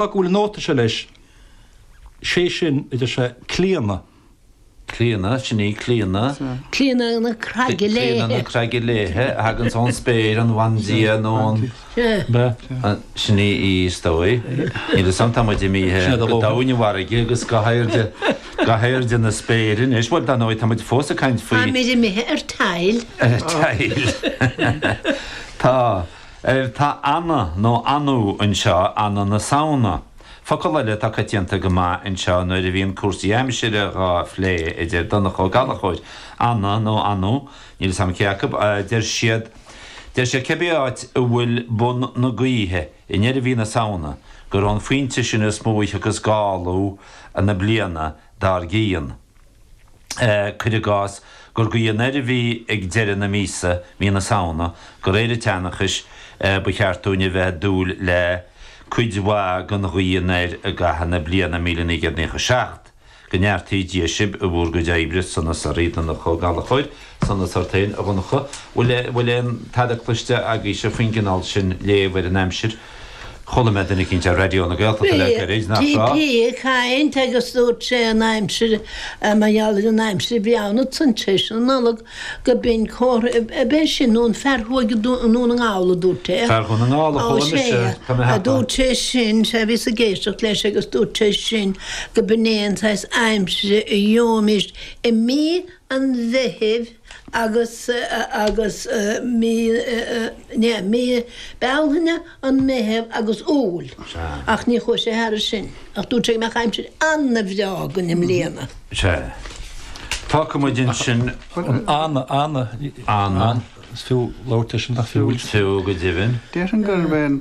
go bhfuil an nóta seo leis, sé sin a deir sé Clíona. Clíona, sin í, Clíona. Clíona na Craige Léithe. Clíona na Craige Léithe a thaganns ón spéir, an bhandia nó an, sin í í, is dóigh. Níl 'fhios a'm, tá muid imithe go domhain i bhfarraige agus go hairde, go hairde na spéire anois, bhuel, dar ndóigh, tá muid fós ag caint faoi, táimid imithe ar tile, ar tile, tá. L Tá anna nó annú anseo, anna na Samhna. Focal eile atá coitianta go maith anseo nuair a bhíonn cúrsaí aimsire dhá phlé a deir Donncha Ó Gallchóir, anna nó annú, níl 'fhios a'm cé acu, deir siad, deir siad cibé áit a bhfuil bun na gaoithe i ndeireadh mhí na Samhna gur ón phointe sin is mó a thiocfas gáltaí na bliana dár gcionn. cuir i gcás, gur gaoth anoir a bhí ag deireadh na míosa, mí na Samhna, de réir an tseanchais ba cheart dúinn a bheith ag dúil le cuid mhaith den ghaoth anoir i gcaitheamh na bliana míle naoi gcéad naocha seacht, go neartaí Dia sibh i bhúr gcuid oibre, Sonas ort, a Dhonncha, Ó Gallchóir, Sonas ort féin, a Dhonncha. Bhfuil aon tada cloiste agaibhse faoin gcineál sin léamh ar an aimsir? Chuala mé duine eicínt ar Raidió na Gaeltachta le gairid, nach raibh? Bhí DPA ag caint agus dúirt sé an aimsir, mar gheall ar an aimsir a bhí ann i seans théis na Nollag, gob in comhartha ab é sin nó an fear a chuaigh go Dún na nGall a dúirt é. Fear Dhún na nGall a chuala mise, tá mé a cheapadh. Dúirt sé sin, sea, bhíos ag éisteacht leis agus dúirt sé sin gob in é an saghas aimsire a gheobhaimis i mí an Mheithimh, agus agus mí ná mí Bealtaine an Meitheamh agus Iúil ach ní chuaidh sé thairis sin ach dúirt sé go mbeadh aimsir an-bhreá againn i mbliana. Sea. Tá cuma air sin. An, an, an, is fiú labhairt leis an, nach fiú? Fiú go deimhin. Déarfainn gurbh é an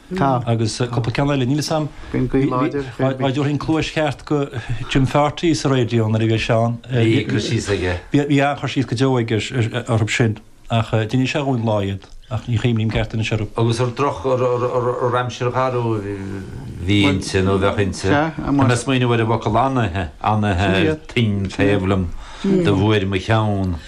Tá. Agus cúpla ceann eile, níl 'fhios a'm. Bíonn gaoth láidir fé ghoib. Dá dtabharfainn cluais cheart do Jim Pharty sa raidió nuair a bhíodh sé ann. Bhí cur síos aige. Bhí an-chur síos go deo aige orthu sin. Ach d'inis sé dhúinn lá iad, ach ní chuimhním céard a d'inis orthu. Agus ar droch aimsir gharbh a bhí inti, nó a bheadh inti. Tá mé ag smaoineamh ar an bhfocal anaithe, anaithe ar toinn taobh liom, do bhuair mo cheann.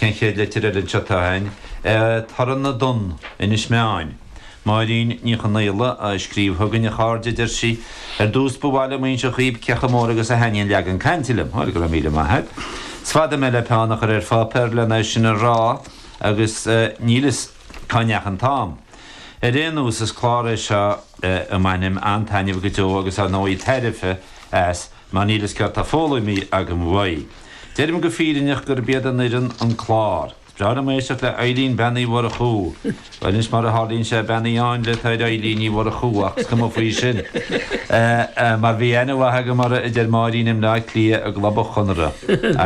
An chéad litir eile anseo atá ann? Torann na dtonn, Inis Meáin. Máirín Ní Chonaola a scríobh chugainn, a chairde, a deir sí. Ar dtús ba mhaith liom a inseacht dhaoibh chomh mór agus a thaitníonn Leagan Cainte liom. Bhuel, go raibh míle maith agat. Is fada mé le peann a chur ar pháipéar len é sin a rá agus níl fhios cá ndeachaigh an t-am. Ar aon nós, is clár é seo a mbainim an-taitneamh go deo agus, ar ndóigh, tairbhe as mar níl fhios céard tá foghlamtha agam uaidh. Deirim go fírinneach gurb iad an fhoireann an clár. Is breá liom éisteacht le Eilín Bean Uí Mhurchú. Bhuel, anois mar a tharlaíonn sé, Bean Uí Áinle atá ar Eilín Ní Mhurchú ach is cuma faoi sin, mar bhí aithne mhaith agam orthu, a deir Máirín, i mBleá Cliath i gclub an Chonartha.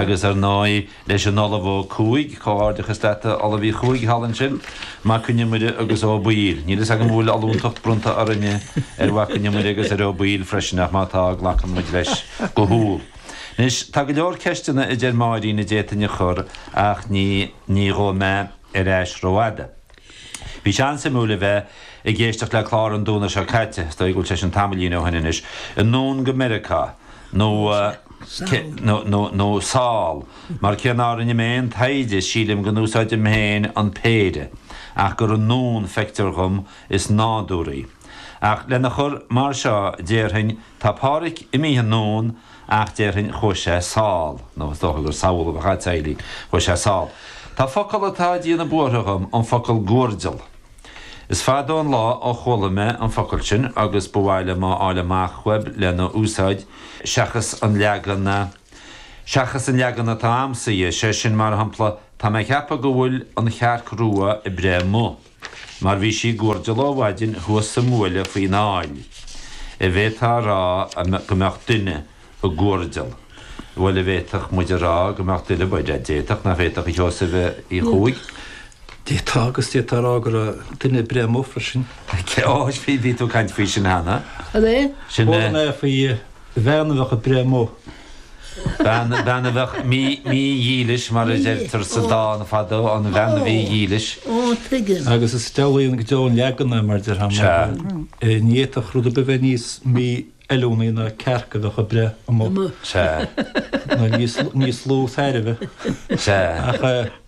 Agus ar ndóigh, leis an Ollamh Ó Cuaig, comhghairdeachas leat a Ollamh Uí Chuaig thall ansin, Mac Con Iomaire agus Ó Baoill. Níl a fhios agam an bhfuil ollúntacht bronnta orainne ar Mhac Con Iomaire agus ar Ó Baoill freisin ach má tá, glacann muid leis go humhal. Anois, tá go leor ceisteanna a deir Máirín a d'fhéadfainn a chur ach ní ní ghabhfaidh mé ar ais rófhada. Bhí sé an-suimiúil a bheith ag éisteacht le clár an Domhnaigh seo caite, is dóigh go bhfuil sé sin tamaillín ó shin anois, anonn go Meiriceá, nó cé, nó, nó, nó sall, mar cé nár rinne mé aon taighde sílim go n-úsáidim féin an péire, ach gur anonn, feictear dhom, is nádúraí. Ach lena chur mar seo, déarfainn, Tá Pádraic imithe anonn ach déarfainn chuaigh sé sall, nó is dócha gur sall a bheadh agat a Eilín, chuaigh sé sall. Tá focal atá ag déanamh buartha dhom, an focal guairdeall. Is fada an lá ó chuala mé an focal sin agus ba mhaith liom a fháil amach uaibh lena úsáid, seachas an leagan, seachas an leagan atá a'msa dhe, sé sin, mar shampla, tá mé a cheapadh go bhfuil an chearc rua ag breith amuigh. Mar bhí sí ag guairdeall ó mhaidin thuas sa mbuaile faoin aill, an bhféadfá a rá go mbeadh duine ag guairdeall. Bhuel, an bhféadfadh muid a rá go mbeadh duine, d'fhéadfadh, nach bhféadfadh, a Sheosaimh Uí Chuaig? D'fhéadfá agus d'fhéadfá a rá go raibh duine ag breith amuigh freisin. Ó, bhí tú ag caint faoi sin cheana. An é? Chuala mé faoi Bhean a bheadh ag breith amuigh. Bean a bheadh mídhílis, mar a deirtear sa dán fadó, an bhean mhídhílis. Agus is álainn go deo an leagan é, mar a deir Hamlet. Sea. Ní fhéadfadh rud ar bith bheith níos mífheiliúnaí ná cearc a bheadh ag breith amuigh. Sea. Nó níos lú tairbhe. Sea. Ach.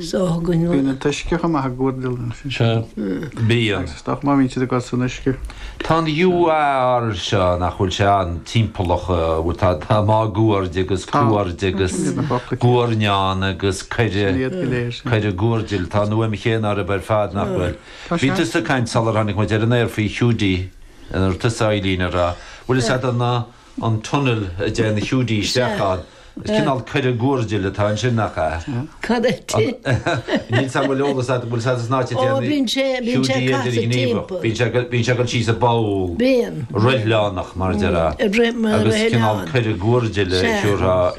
so thug. Bíonn an t-uisce chomh maith ag guairdeall lena féin. Sea, bíonn. Is dócha má bhíonn siad ag dul san uisce. Tá an guair seo, nach bhfuil sé an timpeallach, tá máguaird agus cuaird agus guairneán agus coire, coire guairdill, tá an fhuaim chéanna orthu ar fad, nach bhfuil? Bhí tusa caint sular tháinig muid ar an aer faoi Hiúdaí, ar tusa a Eilín a rá, bhfuil a fhios agat an. an tunnel a dtéann na Hiúdaí isteach ann. Is cineál coire guairdill atá ansin, nach ea? Correct. Níl a fhios agam an bhfuil eolas agat bhfuil sa san áit a deir na Hiúdaí idir ghníomhach. Bíonn sé bíonn sé ag goil síos sa bpoll roithleánach mar deir agus cineál coire guairdill a siúrtha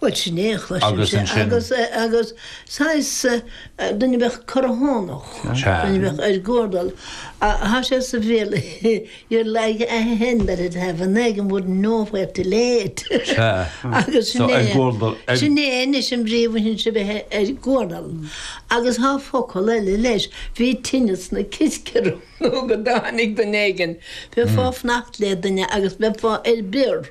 Bhuel, sin é a chloisimse agus saghas duine a bheadh corrthónach, duine a bheadh ar guardal. Thá sé sa bhéal, you're like a hen that had an egg and wouldn't know where to lay it. Agus sin é, sin é anois an bhrí a bhaineann le bheith ar guardal. Agus thá focal eile leis, bhí tinneas sna ciscéimeanna go dtáinig duine éigin, bheifeá ag fanacht le duine agus bheifeá ar bior.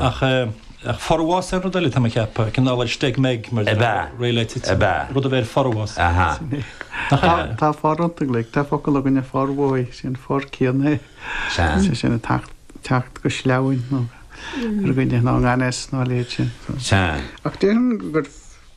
Ach forbhás ar rud eile, tá mé ag ceapadh, cineál ar steig meig mar a bheadh réidh le titim, rud a bheith ar forbhás. Tá 'for' iontu uilig, tá focal againn ar formhothaithe, sin an 'for' céanna é. Sea. Sin ag teacht go sleamhain ar dhuine nó i ngan fhios nó a leithéid sin. Sea. Ach déarfainn gur.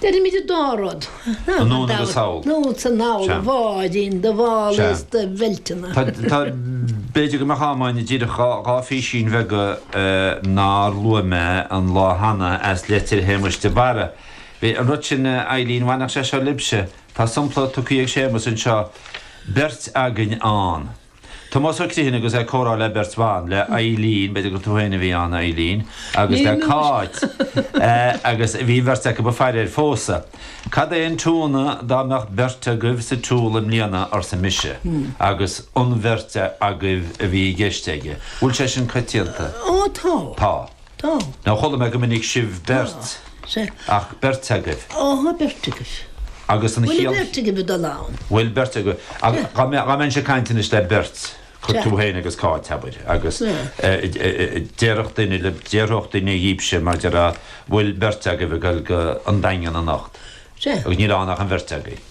Deirimid an dá rud. Anonn agus thall. Anonn is anall, a bháidín, do mhála is do bheilteanna. Tá, b'fhéidir go mbeadh am againn díreach dhá phísín bheaga nár luaigh mé an lá cheana as litir Shéamuis de Barra. Bhí an rud sin, a Eileen, bhainfeadh sé seo libhse. Tá sampla tugtha ag Séamus anseo, beirt againn ann. Tomás Ó Criomhthain agus é ag comhrá le beirt bhan, le Eileen, b'fhéidir gur tú féin a bhí ann a Eileen, agus le Cáit, agus bhí an bheirt acu ag faire ar phósadh. Cad é an t-ionadh dá mbeadh beirt agaibh sa tsiúl i mbliana, arsa mise, agus an bheirt agaibh a bhí i gceist aige. Bhfuil sé sin coitianta? Ó tá. Tá. Tá. Nó chuala mé go minic sibh beirt, ach beirt agaibh. Tá beirt agaibh. Agus an chiall? Bhfuil beirt agaibh ag dul ann? Bhfuil beirt agaibh. Ach dá mbeinn ag caint anois le beirt, tú féin agus Cáit, abair, agus déarfadh duine le, déarfadh duine libhse, mar déarfá, bhfuil beirt agaibh ag dul go An Daingean anocht? Agus níl ann ach an bheirt agaibh.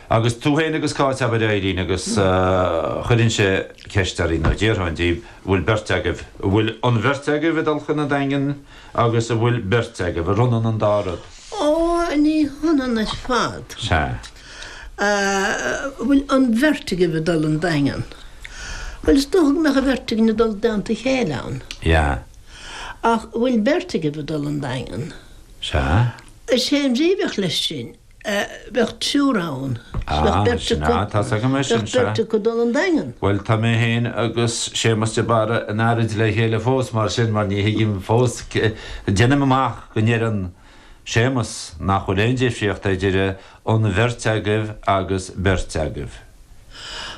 Agus tú féin agus Cáit, abair, a Eileen, agus chuirfinnse ceist oraibh, nó déarfainn daoibh, an bhfuil beirt agaibh, an bhfuil an bheirt agaibh ag dul chun an Daingin agus an bhfuil beirt agaibh, arb ionann an dá rud? Ó, ní hionann ar fad. Sea. An bhfuil an bheirt agaibh ag dul an Daingean? Bhuel, is dócha go mbeadh an bheirt againn ag dul i dteannta a chéile ann. Yeah. Ach an bhfuil beirt agaibh ag dul an Daingean? Sea. Is é an bhrí a bheadh leis sin, bheadh triúr ann, 's bheadh beirt acu, bheadh beirt acu ag dul 'on Daingean. Bhuel, tá mé féin agus Séamas de Barra in earraid le chéile fós, mar sin, mar ní thuigim fós, deinim amach go ndeireann Séamas nach bhfuil aon difríocht idir 'an bheirt agaibh' agus 'beirt agaibh'.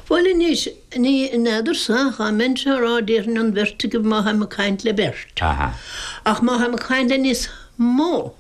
Bhuel anois, ní fheadarsa, dá mbeinnse á rá, déarfainn 'an bheirt agaibh' má tháim ag caint le beirt, ach má tháim ag caint le níos mó,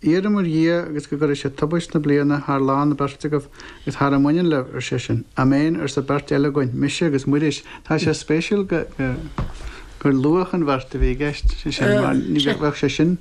Iarraim ar Dhia agus go gcuire sé tubaist na bliana thar lán na beirt agaibh agus thar a mbaineann libh, ar seisean. Améin, arsa beirt eile againn, mise agus Muiris. Tá sé spéisiúil gur luadh an bheirt a bhí i gceist, ar seisean, mar ní bheadh sé sin,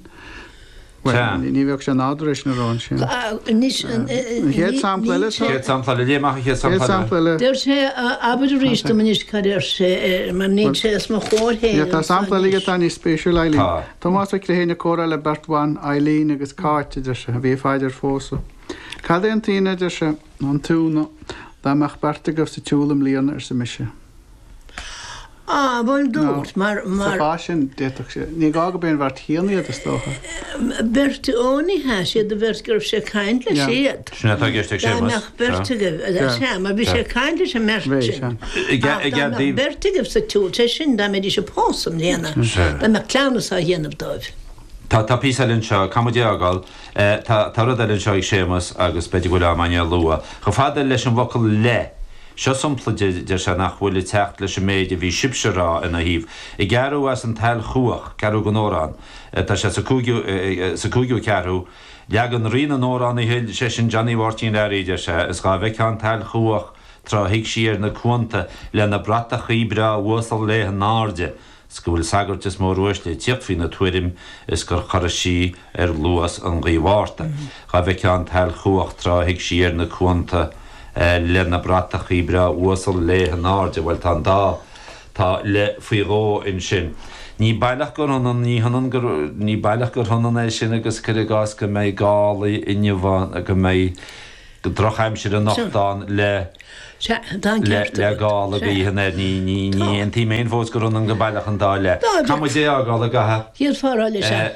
bhuel, ní bheadh sé nádúrtha leis an arán sin. An chéad sampla eile, tá? Céad sampla eile, léigh amach an chéad sampla eile. Céad sampla eile. Deir sé, abair arís dom anois cad a deir sé, mar níl sé os mo chomhair féin. Tá sampla eile aige atá níos spéisiúla, a Eibhlín. Tá. Tomás Ó Criomhthain ag comhrá le beirt bhan, Eibhlín agus Cáit, a deir sé, a bhí ag faire ar phósadh. Cad é an t-ionadh, a deir sé, nó an t-iúnadh, dá mbeadh beirt agaibh sa tsiúl i mbliana, arsa mise. Á, bhuel dúirt, mar, mar. Sa chás sin, d'fhéadfadh sé, ní gá gob é an bheirt chéanna iad, is dócha. Beirt, ó ní hea, is iad an bheirt go raibh sé ag caint leis, iad. Sin atá i gceist ag Séamas. beirt agaibh, ar seisean, mar bhí sé ag caint leis an mbeirt sin. Ach dá mbeadh an bheirt agaibh sa tsiúl, sé sin, dá mbeidís ag pósadh i mbliana, dá mbeadh cleamhnas á dhéanamh dóibh. Tá, tá píosa eile anseo, caithfidh muid é a fhágáil? Tá, tá rud eile anseo ag Séamas agus b'fhéidir go bhfuil am ann é a lua. Chomh fada leis an bhfocal 'le', seo sampla, deir sé nach bhfuil ag teacht leis an méid a bhí sibhse a rá ina thaobh. I gceathrú as An tSail Chuach, ceathrú den amhrán. Tá sé sa cúigiú, sa cúigiú ceathrú. Leagan Rí na nAmhrán a thuill seisean Johnny Mháirtín Learaí, deir sé, is dhá bhfeictheá an tSail Chuach tráth a shuigh sí ar na cuanta lena bratachaí breá uasal léi in airde 's go bhfuil sagairt is móruaisle ag tíocht faoina tuairim is gur chorraigh sí ar luas an ghaoth Mhárta dhá bhfeictheá an tSail Chuach tráth a shuigh sí ar na cuanta lena bratachaí breá uasal léi in airde Bhuel tá an dá Tá le faoi dhó ansin. Ní baileach gur ionann, ní hionann gur, ní baileach gur hionann é sin agus cuir i gcás go mbeidh gála inniu ann, go mbeidh drochaimsir anocht ann le, le, le gála gaoithe anoir. Ní, ní, ní aontaím fhéin fós gur ionann go baileach an dá le. Caithfidh muid é a fhágáil, an gcaithfidh? Dhíolfar eolas ar.